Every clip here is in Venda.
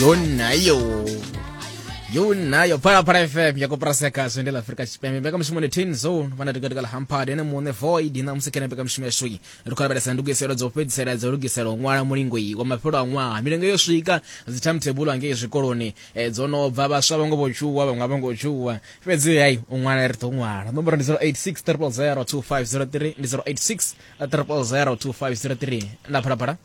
yo nayo yo nayo phalaphala fm ya kopraseka zwi ndi la afrika tshipembe mbekamishumo ndi tin zone vana tikati kala hampad ene muṋe void na musi kene mbekamishumo yashu iyi ri khou lavhelesa ndugiselo dza u fhedzisela dza u lugisela u ṅwala mulingo iyi wa mafhelo a ṅwaha milingo yo swika dzi timetable angei zwikoloni eh, dzo no bva vhaswa vho ngo vho tshuwa vhaṅwe a vho ngo tshuwa fhedzi hayi u ṅwala ri ḓo ṅwala nomboro ndi 086 300 2503 ndi 086 300 2503 na phalaphala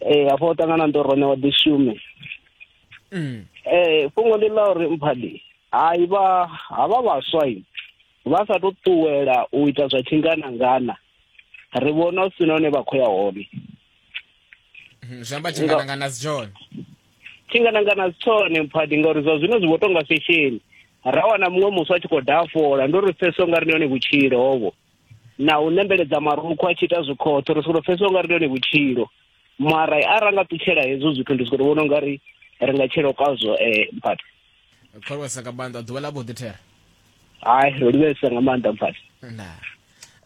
ee afho o ṱangana ndo rone wa ḓi shume mm. ee fhungo ndi ḽa uri mphadi hai vha havha vhaswa vha sa tou ṱuwela u ita zwa tshinganangana ri vhona u si na hune vha khou ya hone mm, zwi amba tshinganangana si tshone tshinganangana si tshone mphadi ngauri zwa zwino zwi vho tonga fesheni ra wana muṅwe muswa a tshi khou dafola ndo ri pfesa ungari ndi hone vhutshilo hovho na u nembeledza marukhu a tshi ita zwikhotho ri soko pfesesa ungari ndi yone vhutshilo mara a ra nga ṱutshela hezwo zwithu ndi soko vhona ungari ri nga tshelo kazwo eh mphathi khwalwesa nga maanḓa ḓuvha ḽa vhuḓi thera hayi ro livhesa nga maanḓa mphathi na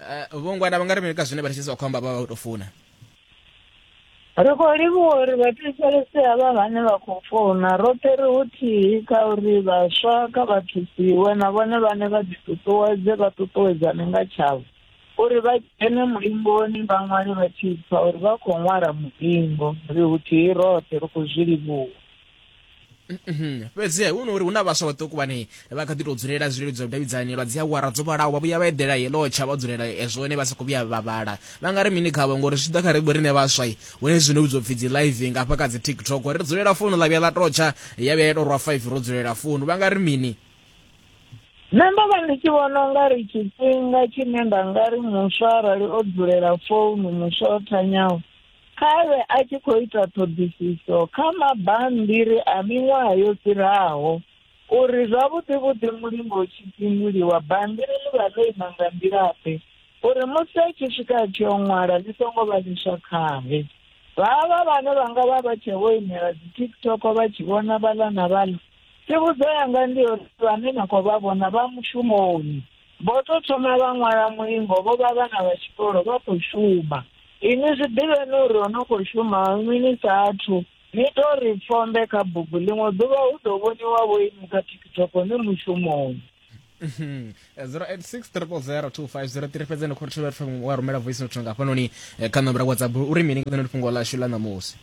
eh, vhongwana vha nga ri mini ka zwine vha tshi sa khou amba vha vha vho tou funa Ri khou livhuwa uri vhathetshelesi havha vhane vha khou founa roṱhe ri huthihi kha uri vhaswa kha vha thusiwe na vhone vhane vha ḓiṱuṱuwedze vha ṱuṱuwedzane nga tshavho uri vha dzhene mulingoni vha ṅwale vha tshi pfa uri vha khou ṅwala mulingo. Ri huthihi roṱhe ri khou zwi livhuwa. Mhm. fhedzi hu no uri hu na vhaswa vhaṱuku vhane vha kha ḓi tou dzulela zwileludzi zwa vhudavhidzani lwa dzi awara dzo vhalaho vha vhuya vha eḓela yelo tsha vha dzulela ezwo ne vha sa khou vhuya vha vhala vha nga ri mini khavho ngori zwi tshi ḓa kha ribo rine vhaswa hune zwino vhidzwa pfhi dzi live nga hafha kha dzi tiktok ri dzulela founu ḽa vhuya ḽa totsha ya vhuya ya tou rwa five ro dzulela founu vha nga ri mini nṋe ndo vha ndi tshi vhona unga ri tshifhinga tshine nda nga ri muswa arali o dzulela founu muswa o thanyaho Kha vhe a tshi khou ita ṱhoḓisiso kha mabammbiri a miṅwaha yo fhiraho uri zwavhuḓi-vhuḓi mulingo u tshi pinduliwa bammbiri ḽi vha ḽo ima nga nḓila-ḓe uri musi a tshi swika a tshi o ṅwala ḽi songo vha ḽiswa khae. Vhavha vhane vha nga vha vha tshe vho imela dzi-TikTok vha tshi vhona vhaḽa na vhaḽa, tsivhudzo yanga ndi yo uri vhane na khou vha vhona vha mushumoni. Vho tou thoma vha ṅwala mulingo vho vha vhana vha tshikolo vha khou shuma. Inwi zwi ḓivheni uri ho no khou shuma nwi ni sa athu, ni tou ri fombe kha bugu, ḽiṅwe ḓuvha hu ḓo vhoniwa vho inwi kha TikTok ni mushumoni. 0860002503 fhedzi ni khou ri thivhela wa rumela voice note nga hafhanoni eh, kha namba ra WhatsApp uri mini nga ḽeneḽo fhungo ḽashu ḽa ṋamusi.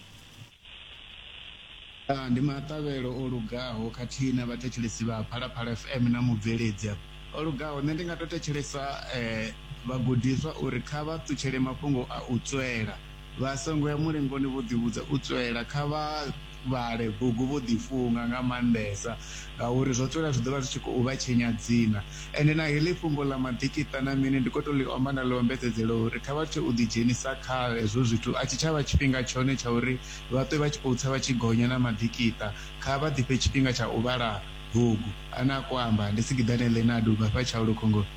Ndi maṱavhelo o lugaho khathihi na vhathetshelesi vha Phalaphala FM na mubveledzi o lugaho. Nṋe ndi nga to thetshelesa vhagudiswa uri kha vha ṱutshele mafhungo a u tswela vha songo ya mulingoni vho ḓi vhudza u tswela kha vha vhale bugu vho ḓi funga nga maanḓesa ngauri zwo tswela zwi ḓovha zwi tshi khou vha tshenyadzina. Ende na heḽi fhungo ḽa maḓikiṱa na mini ndi khou tou ḽi omba nda ḽi ombedzedzela uri kha vha tshe u ḓidzhenisa kha hezwo zwithu, a tshi tsha vha tshifhinga tshone tsha uri vha ṱwe vha tshi khou tsa vha tshi gonya na maḓikiṱa. Kha vha ḓifhe tshifhinga tsha u vhala bugu. A ne a khou amba? Ndi Sigiḓane Leonard u bva hafha Tshaulu Khongoni.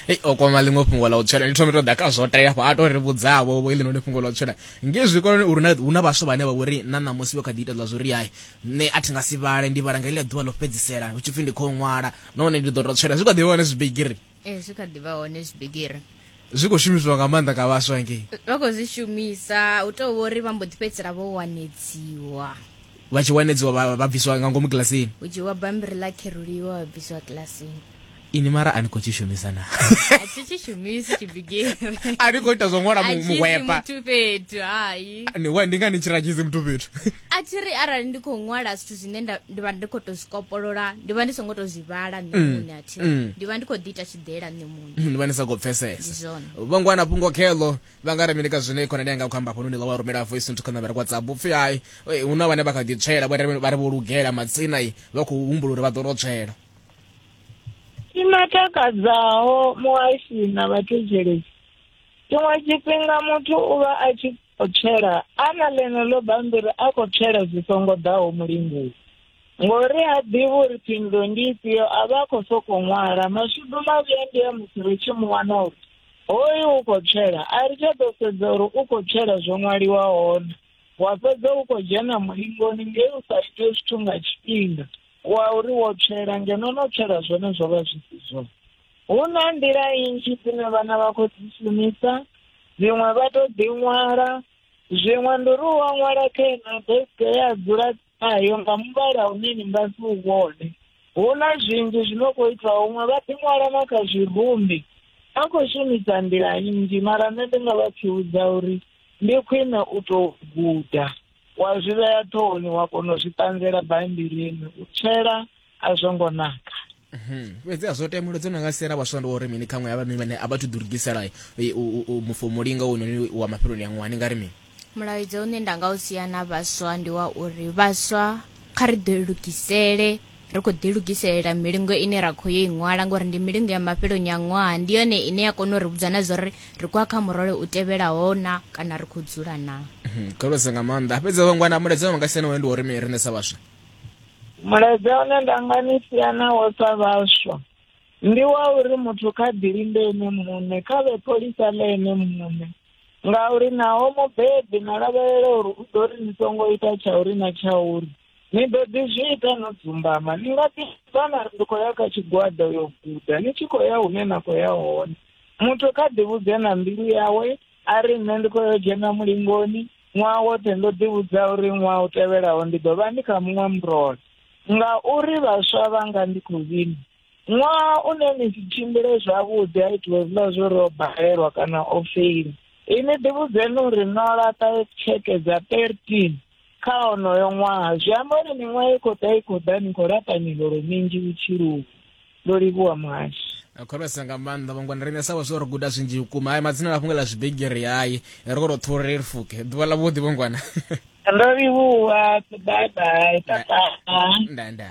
Hei, o kwama ḽiṅwe fhungo ḽa u tswela. Ndi thome tou ḓa kha zwo tea hafha, a tou ri vhudza-vho vho heḽinoni fhungo ḽa u tswela ngei zwikoloni uri hu na vhaswa vhane vha vho ri na ṋamusi vho kha ḓi ita ḽa zwo ri hai, nṋe a thi nga si vhale, ndi vhala nga heḽia ḓuvha ḽo fhedzisela hu tshi pfi ndi khou ṅwala. nahone ndi ḓo tou tswela zwi kha ḓivha hone zwibigiri ee zwi kha ḓivha hone zwibigiri zwi khou shumiswa nga maanḓa nga vhaswa ngei vha khou zwi shumisa u tou vho uri vha mbo ḓi fhedzisela vho wanedziwa vha tshi wanedziwa vha bviswa nga ngomu kilasini u dzhiwa bambiri ḽa kheruliwa vha bviswa kilasini ini mara a ni khou tshi shumisa na a thi tshi shumisi tshibigiri a ni khou ita zwo ṅwala muhwepa fhethu hai ni wa ndi nga ni tshi radzhisi muthu fhethu a thi ri arali ndi khou ṅwala zwithu zwine nda- ndi vha ndi khou tou zwi kopolola ndi vha ndi songo tou zwi vhala nṋe Mm, muṋe a thi ri mm. ndi vha ndi khou ḓi ita tshiḓela nṋe muṋe ndi vha ndi sa khou ndi pfesesa zwone vho ngwana fhungo kheḽo vha nga ri mini ka zwine khonani yanga khou amba hafhanoni ḽa wa rumela voice nthu kha nambara whatsapp upfi hai eh, hu na vhane vha kha ḓi tswela vha ri- vha ri vho lugela madzina i vha khou humbula uri vha ḓo no tswela tshima takadzaho muhashi na vhathetshelesi tshiṅwe tshifhinga muthu u vha a tshi o tswela a na ḽeneḽo bammbiri a khou tswela zwi songo ḓaho mulingoni ngori ha ḓivhi uri phindulo ndi ifhio a vha a khou sokou ṅwala mashudu mavhi a ndi a musi ri tshi mu wana uri hoyu u khou tswela a ri tsha ḓo sedza uri u khou tswela zwo ṅwaliwa hone wa fhedza u khou dzhena mulingoni ngei u sa ite zwithu nga tshifhinga wa uri wo tswela ngeno no tswela zwone zwo vha zwi si zwone Hu na nḓila nnzhi dzine vhana vha khou dzi shumisa dziṅwe vha tou ḓi ṅwala zwiṅwe ndi uri u a ṅwala kha ino deske ya dzula nayo nga muvhala une ni nga si u vhone hu na zwinzhi zwi no khou itwa huṅwe vha ḓi ṅwala na kha zwirumbi a khou shumisa nḓila nnzhi mara nṋe ndi nga vha pfhiwudza uri ndi khwine u tou guda wa zwi vhea ṱhohoni wa kona u zwi ṱanzela baimbilini u tshela a zwo ngo naka Mhm. fhedzi a zwo temulo dzo no nga siela vhaswa ndi uri mini kha ṅwe avhanoni vhane a vha thu ḓilugisela eh, u- u- u mufo mulinga wononi wa mafheloni a ṅwaha ni nga ri mini mulaedza une nda nga u sia na vhaswa ndi wa uri vhaswa kha ri ḓilugisele Ri khou ḓilugiselela milingo ine ra khou yo i ṅwala ngori ndi milingo ya mafheloni a ṅwaha ndi yone ine ya kona u ri vhudza na zwa uri ri khou ya kha murole u tevhelaho na kana ri khou dzula na mhm, kholosa nga maanḓa fhedzi vhangwana mulaedza wa nga siani wone ndi wa uri mi riṋe sa vhaswa mulaedza une nda nga ni siana wo sa vhaswa ndi wa uri muthu kha ḓilinde ene muṋe kha vhe pholisa ḽe ene muṋe ngauri naho mubebi na lavhelela uri u ḓo ri ni songo ita tsha uri na tsha uri Ni ḓo ḓi zwi ita no dzumbama. Ni nga ḓi vhana ri khou ya kha tshigwada u yo guda. Ni tshi khou ya hune na khou ya hone. Muthu kha ḓi vhudze na mbilu yawe a ri nṋe ndi khou yo dzhena mulingoni ṅwaha woṱhe ndo ḓi vhudza uri ṅwaha u tevhelaho ndi ḓo vha ndi kha muṅwe murole ngauri vhaswa vhanga ndi khou vhina ṅwaha une ni si tshimbile zwavhuḓi a itiwe zwiḽa zwo ri o balelwa kana o feili ini ḓivhudzeni uri no laṱa tsheke dza thirteen kha onoyo ṅwaha zwi amba uri miṅwaha i khou ḓa i khou ḓa ni khou laṱa miholo minzhi vhutshiloni ndo livhuwa muhashi khorwesa nga maanḓa vhangwana riṋe sa vhaswa ri guda zwinzhi vhukuma hayi madzina na fhungo ḽa zwibigiri hayi ri khou tou ṱhuri ri fuke ḓuvha ḽa vhuḓi vhangwana ndo livhuwa bye bye tata nda nda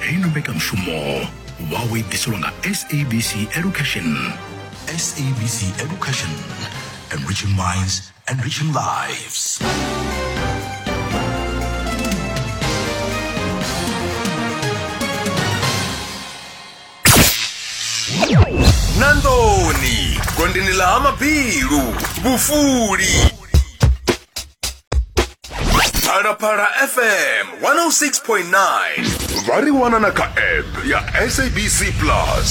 heino mbekanyamushumo vhawo i ḓiselwa nga sabc education sabc education enriching minds enriching lives na nḓuni gondini ḽa ha mabilu vhufuli phalaphala fm 106.9 vha ri wana na kha app ya sabc plus